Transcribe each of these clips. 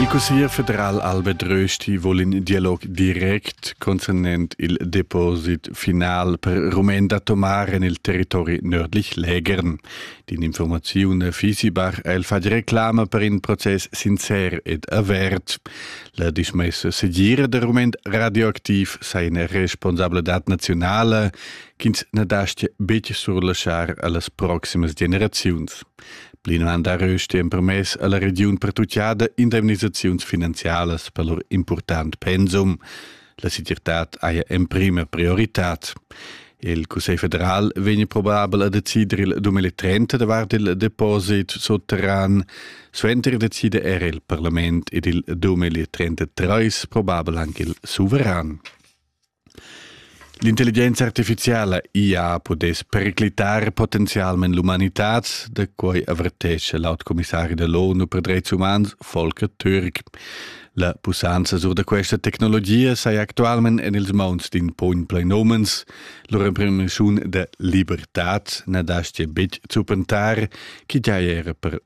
Il cusseglier federal Albert Rösti vuol in dialog direct concernent il deposit final per Rumen da tomar en il territori nördlich Lägern. Din informaziun Fisibach el fa reclama per in proces sincer ed avert. La dismessa segir de Rument radioaktiv sei eine responsabile dat nationale ch'ins na dastia betg surlaschar a las proximas generaziuns. Plinavant ha Rösti empermess a la regiun pertucciada indemnisaziuns finanzialas per lur important pensum. La segirtad haja emprima prioritad. Il Cussegl federal vegn probabel a decider il 2030 davart il deposit sotterran. Suenter decida er il parlament ed il 2033 probabel anche il suveran. L'intelligenza artificiala ia pudess periclitar potenzialment l'umanitad, da quai avertescha l'autocommissari de l'ONU per dreits umans Volker Türk. La pussanza sur da questa tecnologia sai actualment en ils mauns d'in pugn plain omens. Lur imprimiziun de libertad na dastia betg zupentar, chi giai era per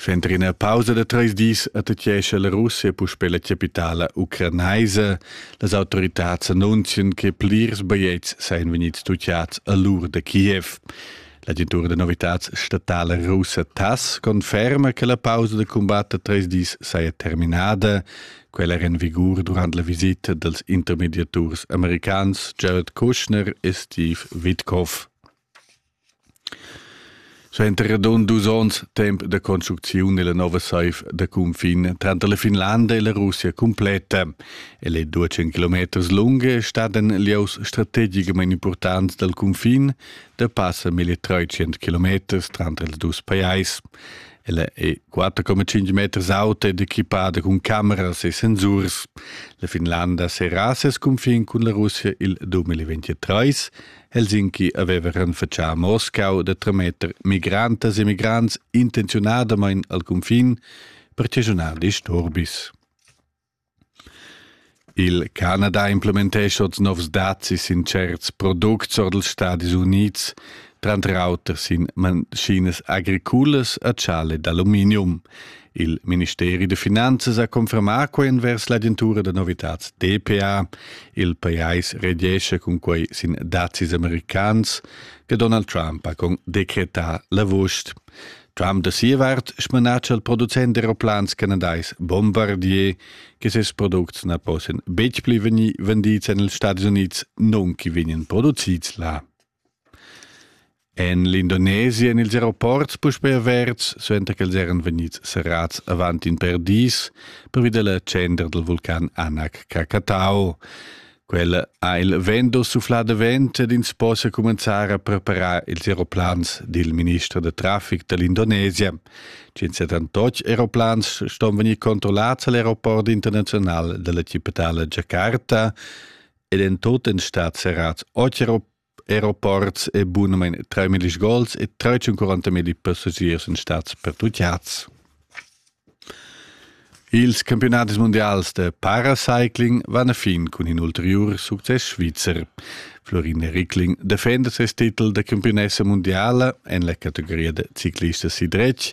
Sch'entri ina pausa da treis dis attachescha la Russia puspè la capitala ucranaisa. Las autoritads annunzian che plirs bajetgs sajan vegnids tutgads a l'ur da Kiev. L'agentura da novitads statala russa TASS conferma che la pausa da cumbat da treis dis saja terminada. Quella era en vigur durant la visita dals intermediaturs americans Jared Kushner e Steve Witkoff. Suenter radund dus onns temp da construcziun è la nova saiv da cunfin tranter la Finlanda e la Russia cumpletta. El è 12 kilometers lung e stat en lieus strategicamain impurtants dal cunfin da passa 1300 kilometers tranter ils dus pajais. Ella è 4,5 meters auta ed equipada cun cameras e sensurs. La Finlanda serra ses cunfin cun la Russia il 2023 Helsinki aveva renfatschà a Moscau da trametter migrantas e migrants intenziunadamain al cunfin per chaschunar disturbis. Il Canada implementescha oz novs dazis sin certs products or dals Stadis Unids, tranter auter sin maschinas agriculas a chale d'aluminium. Il ministeri da finanzas ha confermà quai envers l'agentura da novitads DPA. Il pajais rediescha cun quai sin dazis americans che Donald Trump ha con decretà l'avust. Trump da sia vart smanatscha il producent d'aeroplans canadais Bombardier che ses products na possian betg pli vegnir vendids en ils Stati Unids, non che vegnan producids là. En l'Indonesia èn ils aeroports puspè averts, suenter ch'els eran vegnids serrads avant in per dis pervi da la tschendra dal vulcan Anak Krakatau. Quella ha il vento suflà davent ed ins possa cumenzar a preparar ils aeroplans, di il minister da traffic da l'Indonesia. 178 aeroplans ston vegnir controllats a l'aeroport internazional dalla cittadella Jakarta ed en tot en stat serrats 8 aeroports e bunamein 3.000 gols e 340.000 passagiers in stats pertucciats. Ils campionatis mundials de paracycling van a fin cun in ulteriur success svizzer. Florin Rickling defenda ses titel de campionessa mundiala en la categoria de ciclista sidretg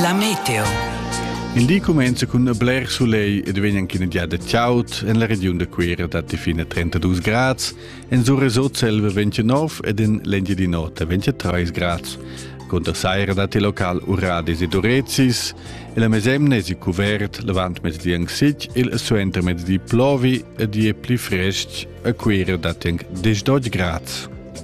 La meteo. In di cumenza cun bler sulegl ed vegn anche in giada chaud en la regiun da Cuira datti fine 32 grads, en Sur Resort selva 29 ed in l'Engiadin'Ota 23 grads. Conter saira datti local uradis ed urezis e la mesemna è cuvert l'avant mezdi anc sic, il suenter mezdi plovi ed è pli frestg a Cuira datti anche 10 grads.